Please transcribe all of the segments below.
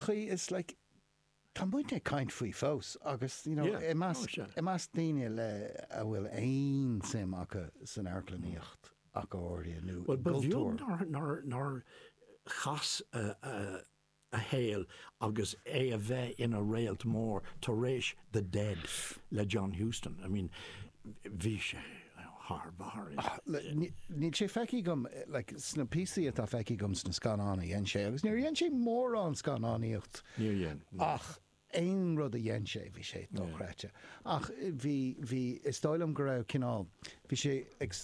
chaoi, it's like tá muidne ag caint faoi fós agus you know i measc, i measc daoine le, a bhfuil aon suim acu san amharclannaíocht ach go háirithe nó i gcultúr. Ba bheag nár, nár chas a shaol agus é a bheith ina réalt mór tar éis the dead le John Huston, I mean bhí sé thar barr. Níl sé feicthe agam, like sna píosaí atá feicthe agam sna scannáin a dhein sé, agus níor dhein sé mórán scannánaíocht ach aon rud a dhein sé bhí sé dochreidte ach bhí, bhí, is dóigh liom go raibh cineál, bhí sé ag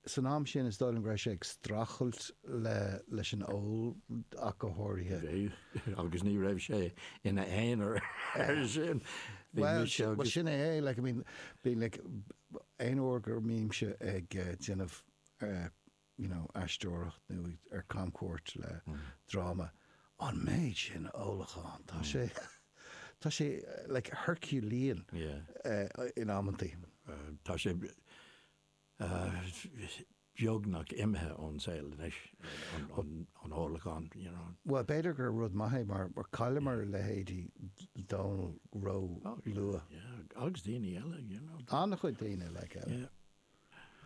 San am sin, is dóigh liom go raibh sé ag streachailt leis an ól ach go háirithe. Bhí, agus ní raibh sé ina aonar ar sin. Bhuel, sin é é, like, I mean, bíonn, like, aon uair go mbímse ag déanamh, you know, aisteoireacht nó ar camchuairt le dráma, an méid sin ólacháin, tá sé, tá sé, like, Herculean in amantaí. Tá sé. beagnach imithe ón saol anois, an ólachán, you know. Bhuel, b'fhéidir gur rud maith é mar chailleamar a leithéidí Dónal ró luath. Yeah, agus daoine eile, you know. An-chuid daoine, like, eile. Yeah.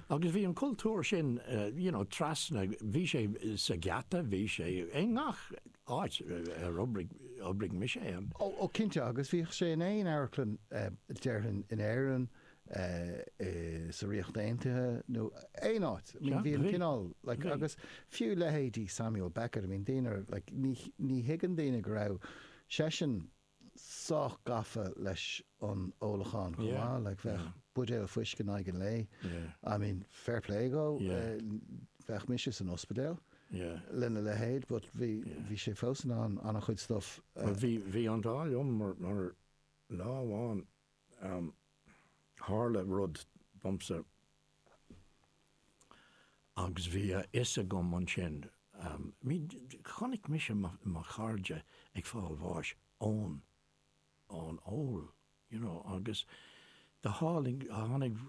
Agus bhí an cultúr sin, you know, trasna, bhí sé sa gheata, bhí sé i ngach áit ar oibrigh mise ann. Oh, oh, cinnte, agus bhíodh sé in aon amharclann, déarfainn, in Éirinn, sa Ríocht Aontaithe nó aon áit. I mean, bhí an cineál, like, agus fiú leithéidí Samuel Beckett, I mean, daoine ar, like, ní, ní thuigeann daoine go raibh seisean sách gafa leis an ólachán chomh maith, like, bheadh buidéal fuisce in aghaidh an lae, I mean, fair play dhó, bheadh mise san ospidéal lena leithéid but bhí, bhí sé fós in ann an-chuid stuff a, Bhí, bhí an t-ádh liom mar, mar lá amháin, am. Tharla rud domsa agus bhí a fhios agam ansin, ní, chonaic mise mo chairde ag fáil bháis ón, ón ól, you know, agus do tháinig, tháinig,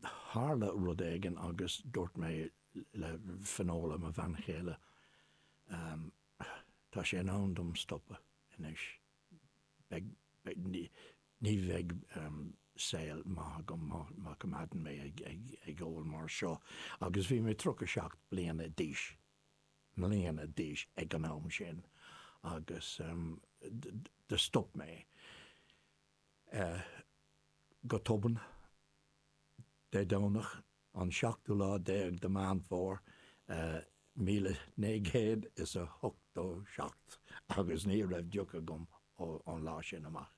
tharla rud éigin agus dúirt mé le Finola, mo bhean chéile, tá sé in am dom stopadh anois. ní bheidh saol maith agam má choimeádann mé ag ól mar seo agus bhí mé tríocha seacht bliana d'aois, mbliana d'aois ag an am sin agus do stop mé go tobann Dé Domhnach An seachtú lá déag de Mheán Fómhair míle naoi gcéad is a hochtó seacht agus ní raibh deoch agam ón lá sin amach.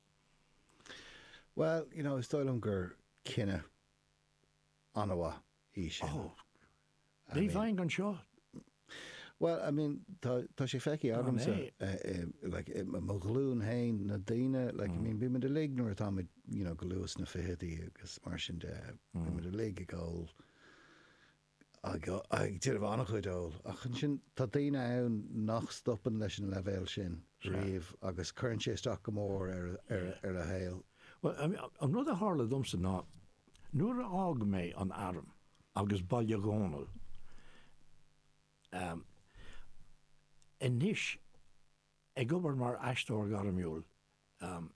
Bhuel, you know, is dóigh liom gur cinneadh an-mhaith í sin. Oh, ní bheinn anseo Bhuel, I mean, tá, tá sé feicthe agamsa, eh, i, like, i mo, mo ghlúin fhéin, na daoine, like, I mean, bíonn muid uilig nuair atá muid, you know, go luath sna fichidí agus mar sin de, bíonn muid uilig ag ól, ag o- ag déanamh an-chuid óil, ach ansin tá daoine ann nach stopann leis an leibhéal sin riamh agus cuireann sé isteach go mór ar, ar, ar a saol. Bhuel, I mean, an rud a tharla domsa ná, nuair a fhág mé an arm, agus, bhuel, a Dhónaill, em, anois ag obair mar aisteoir gairmiúil, em.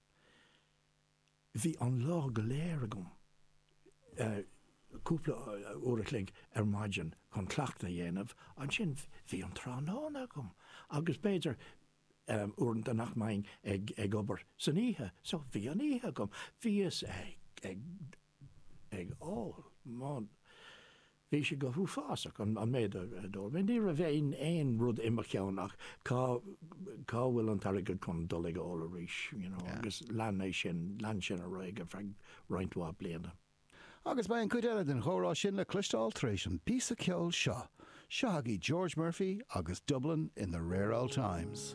bhí an lá go léir agam, eh. cúpla uair a chloig ar maidin chun cleachtadh a dhéanamh, ansin bhí an tráthnóna agam agus b'fhéidir, em. uaireanta nach mbeinn ag obair san oíche so bhí an oíche agam. Bhíos ag. ag ól. Bhí sé go huafásach, an méid a d'ól mé. Ní raibh aon rud i mo cheann ach cá bhfuil an t-airgead chun dul ag ól arís, you know, agus lean é sin, lean sin ar aghaidh ar feadh roinnt mhaith bliana. Agus beidh an chuid eile den chomhrá sin le cloisteáil tar éis an bpíosa ceoil seo. Seo chugaibh George Murphy agus Dublin in the Rare Old Times.